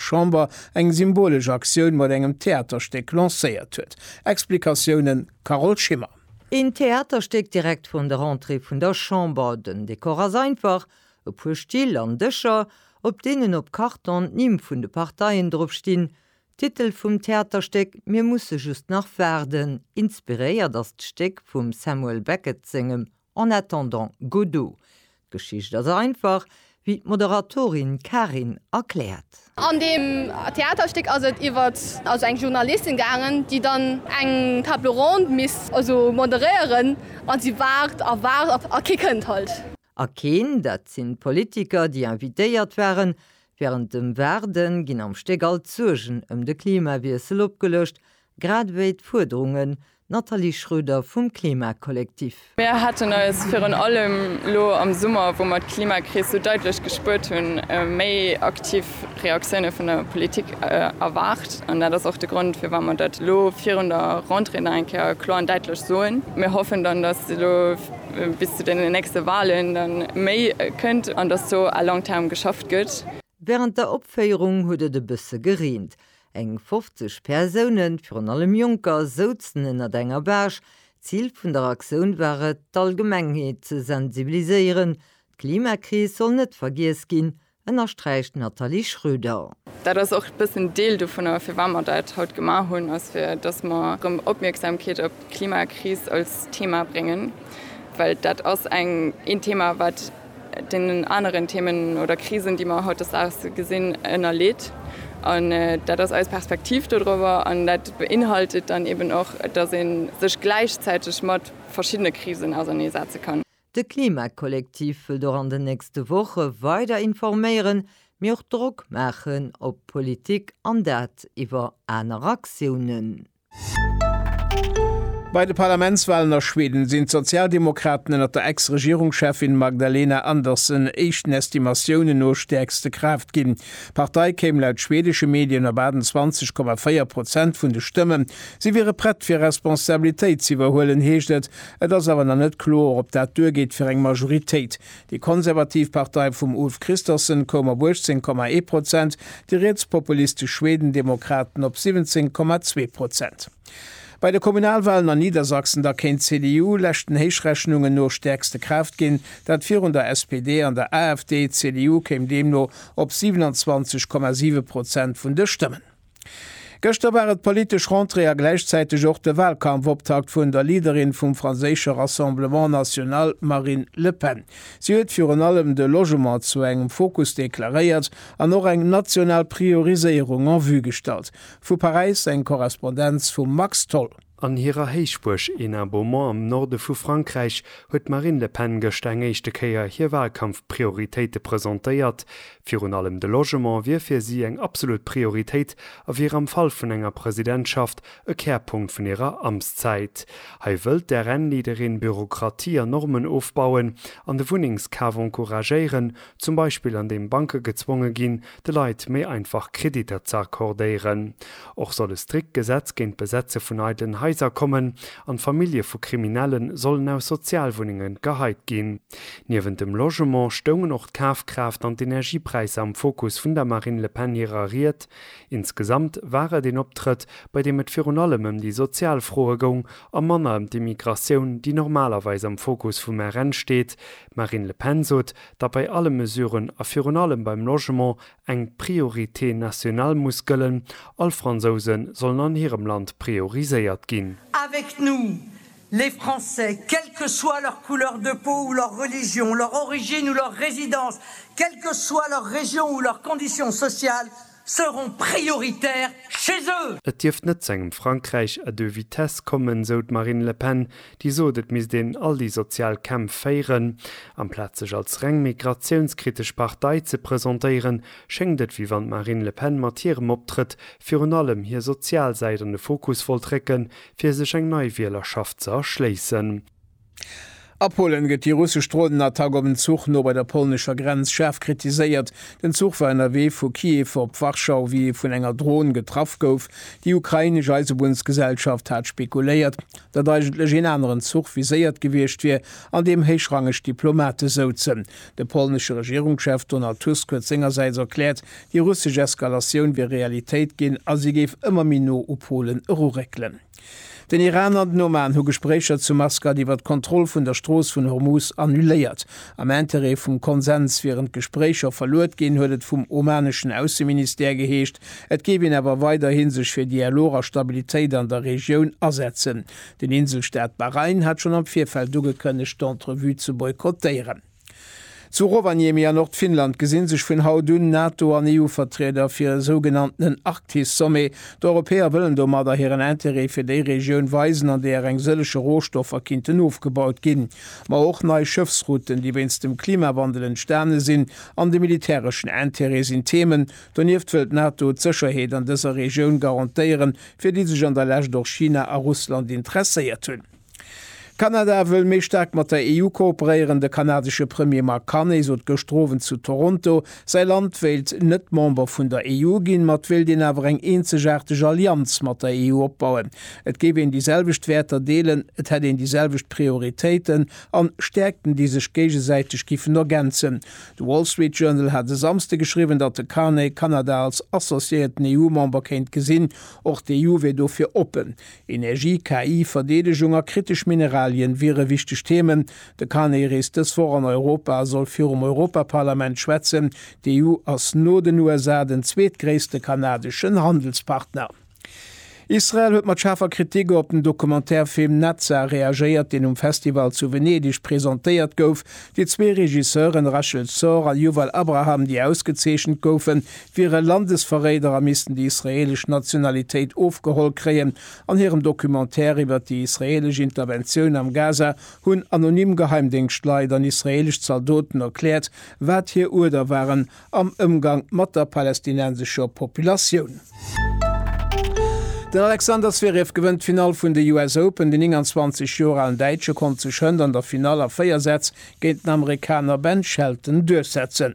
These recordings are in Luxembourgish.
Chamber eng symbolesch Aktioun mat engem Theaterstéck lancéiert huet. Explikatiounen, Carole Schimmer. Een Theaterstéck direkt vrun der Entrée vun der Chamber. Den Dekor ass einfach, e puer Still an Dëscher, op deenen op Karton d'Nimm vun de Parteien drop stinn. Titel vum Theaterstéck, Mir musse just nach waarden. Inspiréiert ass d'Stéck vum Samuel Beckett sengem En attendant, Godot, d'Geschicht ass einfach, wéi d'Moderatorin Karin erkläert. An deem Theaterstéck ass et iwwert also eng Journalistin gaangen, déi dann eng Table ronde misst also moderéieren a si waart a waart a kee kënnt halt. A keen, dat sinn d'Politiker, déi invitéiert waren. Wärend dem Waarde ginn am Stéck all d'Suergen ëm de Klimawiessel opgeluecht, grad ewéi d'Fuerderungen D'Nathalie Schroeder vum Klimakollektiv. Mir haten eis virun allem elo am Summer, wou mer d'Klimakris sou daitlech gespuert hunn, méi aktiv Reaktioune vun der Politik erwaart. An dat ass och de Grond, firwat mer dat elo virun der Rentrée nach eng Kéier kloer an daitlech soen. Mir hoffen dann, dass elo bis zu deenen nächste Wahlen da méi kënnt an dass do à long terme geschafft gëtt. Wärend der Opféierung huet et e bësse gereent. Eng 50 Persounen, virun allem Jonker, souzen ënnert enger Baach. D'Zil vun der Aktioun war et, d'Allgemengheet ze sensibiliséieren. D'Klimakris soll net vergiess ginn, ënnersträicht d'Nathalie Schröder. Dat ass och e bëssen Deel dovunner. Firwat mer dat haut gemaach hunn, ass fir dass mer erëm Opmierksamkeet op d'Klimakris als Thema bréngen, well dat ass eng een Thema wat, deenen aneren Themen oder Krisen, déi mer hautdesdaags gesinn, ënnerleet. An dat ass eis Perspektiv dodrower. An dat beinhaltet dann eben och, dass ee sech gläichzäiteg mat verschiddene Krisen ausernee setze kann. De Klima-Kollektiv wëllt och an den nächste Woche weider informéieren, mee och Drock maachen op d'Politik, an dat iwwer aner Aktiounen. Bei de Parlamentswalen a Schweden sinn d'Sozialdemokraten ënnert der Ex-Regierungscheffin Magdalena Andersson éischten Estimatiounen no stäerkste Kraaft ginn. D'Partei kéim laut schwedesche Medien op 28,4 Prozent vun de Stëmmen. Si wiere prett fir Responsabilitéit z'iwwerhuelen, heescht et. Et ass awer nach net kloer, ob dat duergeet fir eng Majoritéit. Déi konservativ Partei vum Ulf Kristersson koum op 18, ee Prozent, déi rietspopulistesch Schwedendemokraten op 17, zwee Prozent. Bei de Kommunalwalen an Niedersachsen da kéint d'CDU, leschten Héichrechunungen no, stäerkste Kraaft ginn, dat virun der SPD an der AfD. D'CDU kéim deemno op 27,7 Prozent vun de Stëmmen. Gëschter war et d'politesch Rentrée a gläichzäiteg och de Walkampfoptakt vun der Leaderin vum franséische Rassemblement National, Marine Le Pen. Si huet virun allem de Logement zu engem Fokus deklaréiert an och eng national Prioriséierung en vue gestallt. Vu Paräis eng Korrespondenz vum Max Tholl. An hirer Héichbuerg Hénin-Beaumont am Norde vu Frankräich huet d'Marine Le Pen gëschter eng éischte Kéier hir Walkampf-Prioritéite presentéiert. Virun allem de Logement wier fir si eng absolut Prioritéit a wier am Fall vun enger Presidentschaft e Kärpunkt vun hirer Amtszäit. Hei wëllt d'RN-Leaderin Bürokratie an Normen ofbauen an de Wunnengskaf encouragéieren, Zum Beispill an deem Banke gezwonge ginn, de Leit méi einfach Kreditter ze accordéieren. Och soll e strikt Gesetz géint d'Besetze vun eidelen Haiser kommen an d'Famillje vu Kriminelle sollen aus Sozialwunnenge geheit ginn. Niewent dem Logement stoungen och d'Kafkraaft an d'Energiepräisser am Fokus vun der Marine Le Pen hirer Ried. Insgesamt war et een Optrëtt, bei deem et virun allem ëm déi sozial Froe goung a manner ëm d'Immigratioun, déi normalerweis am Fokus vum RN steet, D'Marine Le Pen sot, datt bei alle Mesuren a virun allem beim Logement eng Priorité nationale muss gëllen, all Fransouse sollen an hirem Land prioriséiert ginn. Avec nous, les Français, quelle que soit leur couleur de peau ou leur religion, leur origine ou leur résidence, quelle que soit leur région ou leur condition sociale, seront prioritaires chez eux. Et dierft net zu engem Frankräich à deux vitesses kommen, sou d'Marine Le Pen, déi sot, et misst een all déi sozial Kämpf féieren. Amplaz sech als reng migratiounskritesch Partei ze presentéieren, schéngt et, wéi wann d'Marine Le Pen mat hirem Optrëtt virun allem hir sozial Säit an de Fokus wollt récken, fir sech eng nei Wielerschaft ze erschléissen. A Polen gëtt déi russesch Dronenattack op en Zuch no bei der polnescher Grenz schaarf kritiséiert. Den Zuch war ënnerwee vu Kiew op Warschau, wéi e vun enger Dron getraff gouf. Déi ukrainesch Eisebunnsgesellschaft hat spekuléiert, datt eigentlech een aneren Zuch viséiert gewiescht wier, an deem héichrangeg Diplomate souzen. De polnesche Regierungschef Donald Tusk huet sengersäits erkläert, déi russesch Eskalatioun wier Realitéit ginn a si géif ëmmer méi no u Polen eruréckelen. Den Iran an den Oman hu Gespréicher zu Maskat iwwer d'Kontroll vun der Strooss vun Hormuz annuléiert. Am Interêt vum Konsens wieren d'Gespréicher verluet ginn, huet et vum omaneschen Ausseministère geheescht. Et géif een awer weiderhi sech fir Dialog a Stabilitéit an der Regioun asetzen. Den Inselstaat Bahrain hat schonn am Virfeld ugekënnegt, d'Entrevue ze boykottéieren. Zu Rovaniemi a Nordfinnland gesi sech vun haut un NATO an EU-Vertrieder fir e sougenanntenen Arktis-Sommet. D'Europäer wëllen domadder hiren Interêt fir déi Regioun weisen, an deeër eng sëllege Rohstoffer kinnten ofgebaut ginn. Ma och nei Schëffsrouten, déi wéinst dem Klimawandel entstane sinn, an de militäreschen Interêt sinn Themen. Donieft wëll d'NATO d'Sécherheet an dëser Regioun garantéieren, fir déi sech an der Lescht och China a Russland interesséiert hunn. Kanada wëll méi staark mat der EU kooperéieren. De kanadesche Premier Mark Carney sot gëschter Owend zu Toronto, säi Land wéilt net Member vun der EU ginn, ma et wéilt een awer eng eenzegaarteg Allianz mat der EU opbauen. Et géif een déi selwecht Wäerter deelen, et hätt een déi selwecht Prioritéiten an Stäerkten, déi sech géigesäiteg giffen ergänzen. De Wall Street Journal hat e Samsde geschriwwen, datt de Carney Kanada als associéierten EU-Member kéint gesinn. Och d'EU wier dofir oppen. Energie, KI, Verdeedegung a kritesch Mineralien wiere wichteg Themen. De Carney reest dës Woch an Europa a soll virum Europaparlament schwätzen. D'EU ass no den USA den zweetgréisste kanadeschen Handelspartner. Israel huet mat schaarfer Kritik op den Documentaire-Film Netza reagéiert, deen um Festival zu Venedeg presentéiert gouf. Déi zwee Regisseuren Rachel Szor a Yuval Abraham, déi ausgezeechent goufen, wiere Landesverréider a missten déi israeelesch Nationalitéit ofgeholl kréien. An hirem Documentaire iwwert déi israeelesch Interventioun am Gaza hunn anonym Geheimdéngschtleit an israeelesch Zaldoten erkläert, wat hir Uerder waren am Ëmgang mat der palästinensescher Populatioun. Den Alexander Zverev gewënnt d'Finall vun de US Open. Den 29 Joer alen Däitsche konnt sech hënt an der Finall a 4 Sätz géint den Amerikaner Ben Shelton duerchsetzen.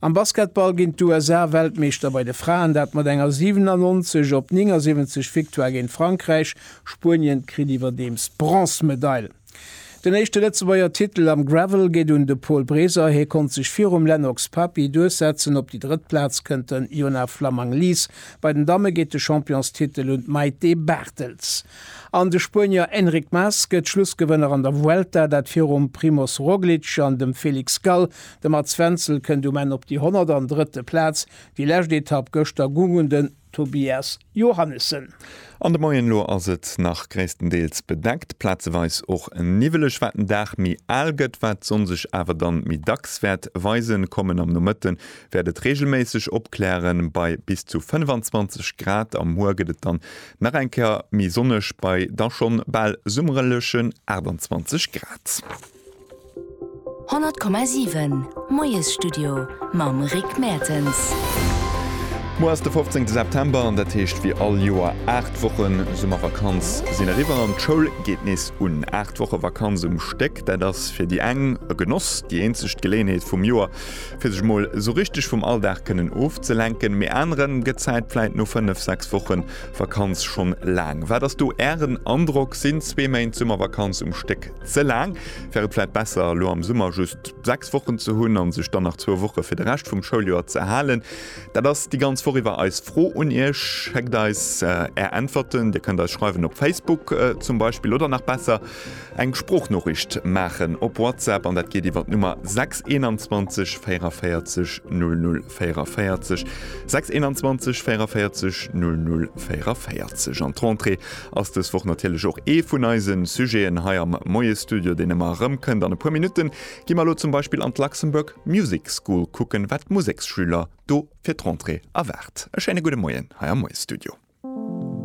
Am Basketball ginn d'USA Weltmeeschter bei de Fraen, dat mat enger 97 op 79 Victoire géint Frankräich. Spuenien kritt iwwerdeems d'Bronzmedail. Den éischte Lëtzebuerger Titel am Gravel geet un de Paul Breser. Hie konnt sech virum Lennox Papi duerchsetzen. Op déi drëtt Plaz kënnt den Yona Flammang-Lies. Bei den Damme geet de Championstitel un d'Mayte Barthels. An de Spuenier Enric Mas gëtt Schlussgewënner an der Vuelta, dat virum Primoz Roglic an dem Felix Gall. De Mats Wenzel kënnt um Enn op déi 103. Plaz. Déi lescht Etapp gëschter gung un den Tobias Johannessen. An de Moien, elo ass et nach gréisstendeels bedeckt, plazeweis och niwweleg. Wat den Dag méi al gëtt, wat d'Sonn sech awer dann méi dacks wäert weisen kommen. Am Nomëtte wäert et reegelméisseg opklären bei bis zu 25 Grad. Am Hoer gëtt et dann nach eng Kéier méi sonneg bei da schonn bal summerlechen 28 Grad. 100,7 Moiesstudio mam Rick Mertens. Muer ass de 15 September an dat heescht wéi all Joer, 8 Wochen Summervakanz sinn eriwwer an d'Schoul geet nees un. 8 Woche Vakanz um Stéck, dat ass fir déi eng e Genoss, déi eenzegt Geléenheet vum Joer fir sech mol sou richteg vum Alldag kënnen ofzelenken. Mee aneren gëtt d'Zäit vläit no 5, 6 Woche Vakanz schonn laang. Wat ass do Ären Androck? Sinn zwee Méint Summervakanz um Stéck Ze laang? Wär et vläit besser, elo am Summer just 6 Wochen ze hunn a sech dann nach zwou Woche fir de Rescht vum Schouljoer ze halen? Dat ass déi ganz Woch iwwer eis Fro un Iech. Schéckt eis Är Äntwerten. Dir kënnt eis schreiwen op Facebook zum Beispill oder nach besser eng Sproochnoriicht maachen op WhatsApp an dat geet iwwer d'Nummer 6 21 44 00 44, 6 21 44 00 44. An d'Rentrée ass dës Woch natierlech och ee vun eise Sujeten hei am Moie-Studio, deen ëmmer erëm kënnt. An e puer Minutte gi mer elo zum Beispill an d'Luxembourg Music School kucken, wat d'Museksschüler do fir d'Rentrée erwaart. E schéine gudde Moien hei am Moie-Studio.